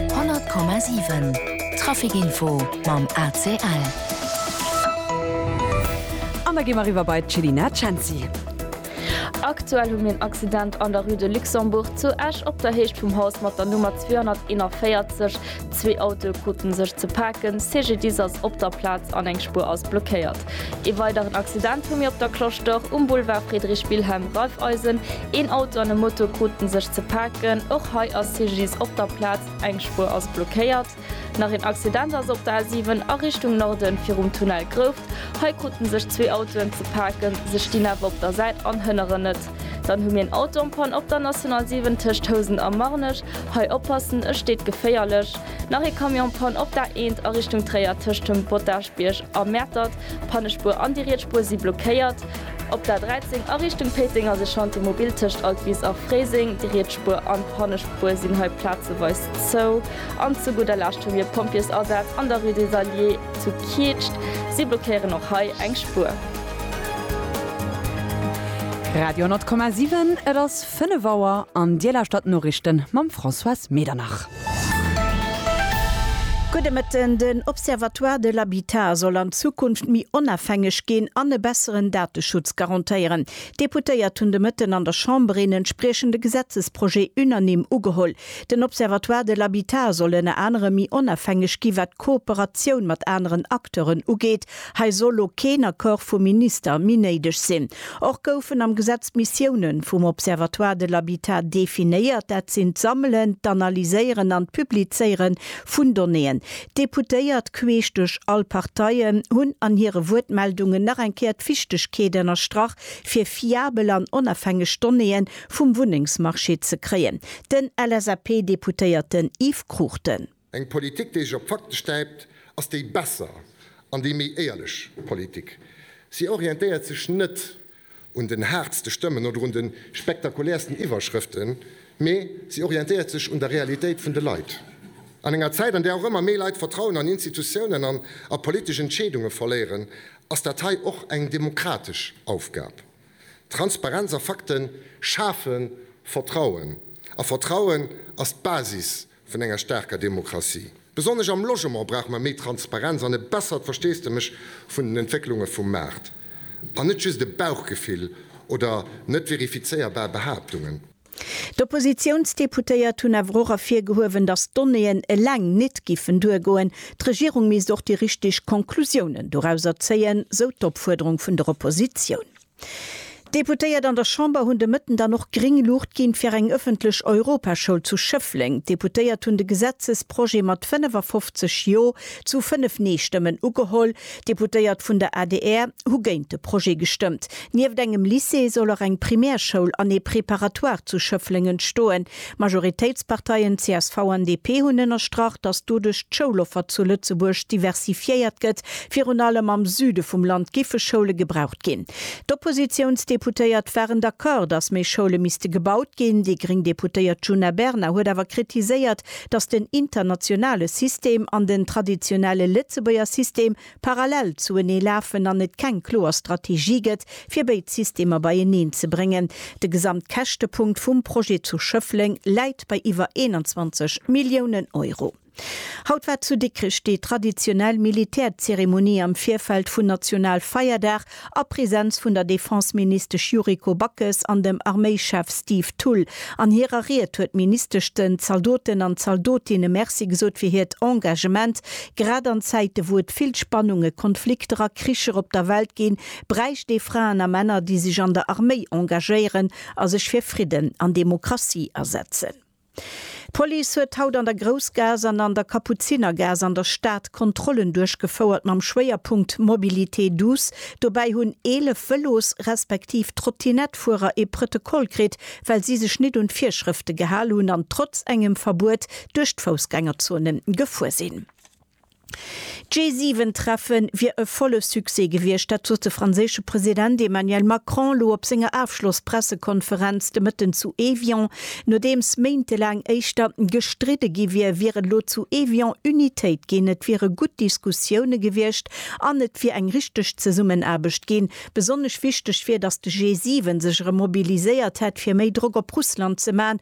100,7 Traficinfo mam ACL. An da gi mer eriwwer bei d'Chelina Cenci. Aktuell hu mir en Accident an der Rue de Luxembourg zu Esch op der Héicht vum Haus mat der Nummer 241. Zwee Autoe kruten sech ze paken, CGDIS ass op der Plaz an eng Spuer ass blockéiert. Ee weideren Accident hu mir op der Cloche d'Or um Boulevard Friedrich Wilhelm, Raiffeisen. Een Auto an e Moto kruten sech ze paken, och hei ass CGDIS op der Plaz. Eng Spuer ass blockéiert. Nach een Accident ass op der A7 a Richtung Norden virum Tunnel Grouft. Hei kruten sech zwee Autoen ze paken, se stinn awer op der Säit an hënneren net. Dann hu mir een Auto en panne op der National 7 tëscht Housen a Marnech. Hei oppassen, e steet geféierlech. Nach ee Camion en panne op der A1 a Richtung Tréier tëscht dem Bottagebierg a Mäertert. Pannespuer an déi riets Spuer si blockéiert. Op der 13 a Richtung Péiteng ass e Chantier mobil tëscht Altwis a Fréiseng. Déi riets Spuer an d'hannescht Spuer sinn hei plazeweis zou. An zu gudder Lescht hu mir Pompjeesasaz an der Rue des Alliés zu Kietscht. Si blockéieren och hei eng Spuer. Radio 10,7, et ass 5 Auer an Dir lauschtert d'Noriichte mam Françoise Medernach. Gudde Mëtten, Den Observatoire de l'habitat soll an Zukunft méi onafhängeg ginn an e besseren Dateschutz garantéieren. D'Deputéiert hunn de Mëtten an der Chamber een entspriechende Gesetzesprojet unanime ugeholl. Den Observatoire de l'habitat soll ënner anerem méi onafhängeg gi wat d'Kooperatioun mat aneren Acteuren ugeet Hei soll lo keen Accord vum Minister méi néideg sinn. Och goufen am Gesetz d'Missioune vum Observatoire de l'habitat definéiert, dat sinn d'Sammelen, d'Analyséieren an d'Publizéiere vun Donnéeën. D'Deputéiert, queesch duerch all Parteien, hunn an hire Wuertmeldungen nach eng Kéier d'Wichtegkeet ënnerstrach, fir fiabel an onafhängeg Donnéeë vum Wunnengsmarché ze kréien. Den LSAP-Deputéierten Yves Cruchten. Eng Politik, déi sech op d'Fakte stäipt, ass déi besser an déi méi éierlech Politik. Si orientéiert sech net un den haartste Stëmmen oder un de spektakulärsten Iwwerschrëften, mee si orientéiert sech un der Realitéit vun de Leit. An enger Zäit, an där och ëmmer méi Leit d'Vertrauen an Institutiounen an a politesch Entscheedunge verléieren, ass dat hei och eng demokratesch Aufgab. Transparenz a Fakte schafe Vertrauen, a Vertrauen ass d'Basis vun enger staarker Demokratie. Besonnesch am Logement brauche mer méi Transparenz an e bessert Versteesdemech vun den Entwécklunge vum Maart, an net just e Bauchgefill oder net verifizéierbar Behaaptungen. D'Oppositiounsdeputéiert hunn awer och ervirgehuewen, datt d'Donnéeën eleng nit giffen duergoen. D'Regierung misst och déi richteg Konklusiounen dorauser zéien, sou d'Opfuerderung vun der Oppositioun. D'Deputéiert an der Chamber hunn de Mëtten dann och gréng Luucht ginn, fir eng ëffentlech Europaschoul zu Schëffleng. D'Deputéiert hunn de Gesetzesprojet mat 55 Jo zu 5 Nee-Stëmmen ugeholl. D'Deputéiert vun der adr hu géint de Projet gestëmmt. Nieft engem Lycée soll och eng Primärschoul an ee Préparatoire zu Schëffleng entstoen. D'Majoritéitsparteien csv an DP hunn ënnerstrach, datt doduerch d'Schouloffer zu Lëtzebuerg diversifiéiert gëtt. Virun allem am Süde vum Land giffe Schoule gebraucht ginn. D'Oppositiounsdeputéiert waren d'accord, datt méi Schoule misste gebaut ginn. Déi gréng Deputéiert Djuna Bernard huet awer kritiséiert, datt den internationale System an den traditionelle Lëtzebuerger System parallel zuenee lafen an et keng kloer Strategie gëtt, fir béid Systemer beieneen ze bréngen. De Gesamtkäschtepunkt vum Projet zu Schëffleng läit bei iwwer 21 Milliounen Euro. Haut war zu Dikrech déi traditionell Militärzeremonie am Virfeld vun Nationalfeierdag a Präsenz vun der Defenseministesch Yuriko Backes an dem Arméischef Steve Thull. An hirer Ried huet d'Ministesch den Zaldoten an Zaldotinne Merci gesot fir hiert Engagement. Grad an Zäite wou et vill Spannungen, Konflikter a Kricher op der Welt ginn, bräicht ee Fraen a Männer, déi sech an der Arméi engagéieren a sech fir Fridden an Demokratie asetzen. D'Police huet haut an der Groussgaass an an der Kapuzinergaass an der Stad Kontrollen duerchgefouert mam Schwéierpunkt Mobilité douce. Dobäi hunn 11 Vëlos respektiv Trottinettefuerer ee Prëtokoll kritt, well si sech nit un d'Virschrëfte gehal hunn an trotz engem Verbuet duerch d'Foussgängerzone gefuer sinn. D'G7-Treffe wier e volle Succès gewiescht, dat sot de franséische President Emmanuel Macron elo op senger Afschloss-Pressekonferenz de Mëtten zu Evian. Nodeems méintelaang éischter gestridde gi wier, wier et elo zu Evian Unitéit ginn, et wiere gutt Diskussioune gewiescht an et wier eng richteg Zesummenaarbecht ginn. Besonnesch wichteg wier, datt de G7 sech erëm mobiliséiert hätt, fir méi Drock op Russland ze man,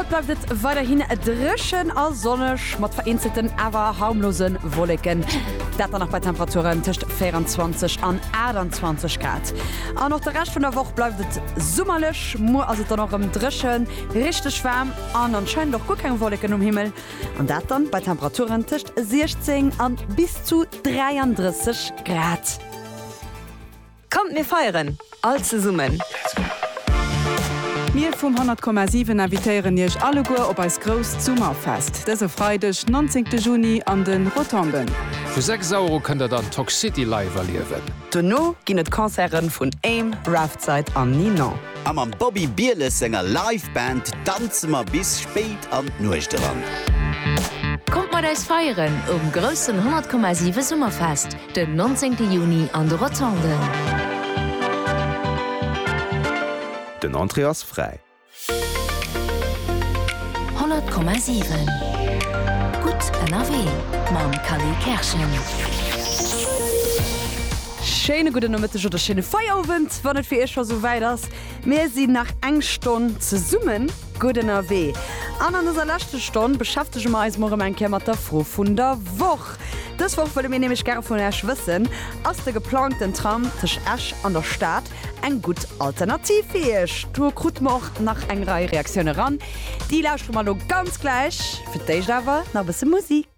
Haut bleift et weiderhin dréchen a sonneg, mat vereenzelten awer harmlose Wolleken, dat dann nach bei Temperaturen tëscht 24 an 28 Grad. An och de Rescht vun der Woch bleift et summerlech, muer ass et dann och rëm dréchen, richteg waarm an anscheinend och guer keng Wolleken um Himmel, an dat dann bei Temperaturen tëscht 16 a bis zu 33 Grad. Kommt mir feieren all zesummen! Mir vum 100,7 invitéieren iech alleguer op eist grousst Summerfest dëse Freideg 19 Juni an de Rotonden. Vu 6 Auer u kënnt der dann Toxcity live erliewen. Dono ginn et Concerten vun Aim, Raftside an Ninon. A mam Bobby Bieles senger Live Band danze mer bis spéit an d'Nuecht eran. Kommt mat eis feieren um groussen 100,7 Summerfest! Den 19 Juni an de Rotonden. Den Entrée ass fräi. 100,7 Gutt ënnerwee mam Khalil Kerschen. Schéine gudden Nomëtteg oder schéine Feierowend, wann et fir Iech scho souwäit ass. Mir sinn nach eng Stonn zesummen. Gutt ënnerwee. An an dëser leschte Stonn beschäftege mer eis mol erëm eng Kéier mat der Fro vun der Woch. Dës Woch wëlle mir nämlech gäre vun Iech wëssen, Ass de geplangten Tram tëscht Esch an der Stad eng gutt Alternativ fir Iech? Do krute mer och nach eng Rei Reaktioune eran. Déi lauschtere mer elo ganz gläich. Fir d'éischt awer nach e bësse Musik.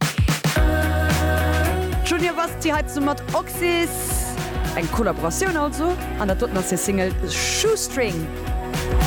Junior Basti hei zesumme mat Oxys. Eng Kollaboratioun also. An dat doten ass hir Single Shoestring.